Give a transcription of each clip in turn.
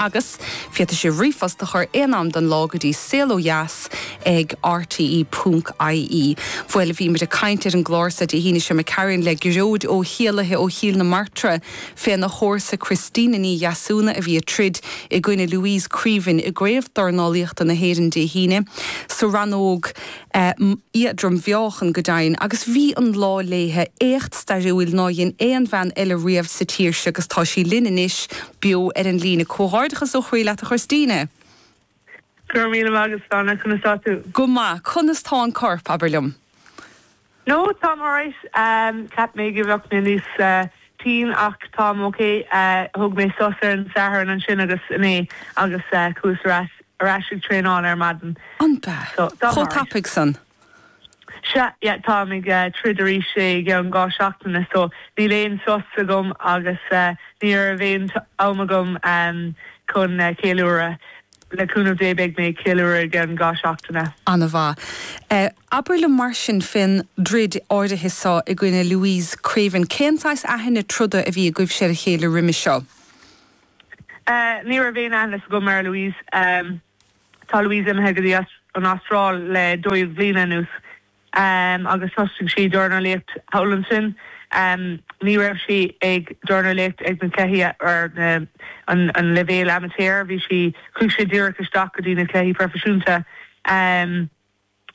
Agus féadfaidh sibh ríomhphost a chur aon am den lá go dtí saol ó dheas ag rte punc ie. Bhoil, bhíomar ag caint ar an gclár so Dé hAoine seo caite, le Gearóid Ó hÉalaithe ó Chill na Martra féna chomharsa Christina Ní Dheasúna a bhí ag troid i gcoinne Louise Creaven i gCraobh Dornálaíochta na hÉireann Dé hAoine sa rannóg éadrom-mheáchain, go deimhin, agus bhí an lá léithe, éacht stairiúil ná dhein aon bhean eile riamh sa tír seo agus tá sí linn anois, beo ar an líne. Comhghairdeachas ó chroí leat a Christina! Go raibh míle maith agat a Shláine, conas tá tú? Go maith, conas tá an corp, abair liom? No, táim alright. Cheap mé go bheadh mé níos tinn ach táim ok. Thóg mé sos ar an Satharn ansin agus inné agus chuas ar ais ag traenáil ar maidin. An ea? So, táim alright. Chomh tapaidh san? Sea, yeah, táim ag troid arís i gceann dhá seachtaine so níl aon sos agam agus ní raibh aon am agam chun ceiliúradh. Le cúnamh Dé beidh mé ag ceiliúradh i gceann dhá seachtaine. Ana mhaith. Abair liom mar sin fén dtroid áirithe seo i gcoinne Louise Creaven. Cén saghas aithne troda a bhí agaibhse ar a chéile roimis seo? Ahh, ní raibh aon aithne agam ar Louise. Ahh, tá Louise imithe go dtí an Astráil le dó dhéag bliana anuas. Ahh, agus thosaigh sí ag dornálaíocht thall ansin. Ahh, ní raibh sí ag dornálaíocht ag na cluichí ar an leibhéal amaitéar. Bhí sí. chuaigh sí díreach isteach go dtí na cluichí proifisiúnta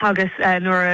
agus nuair a.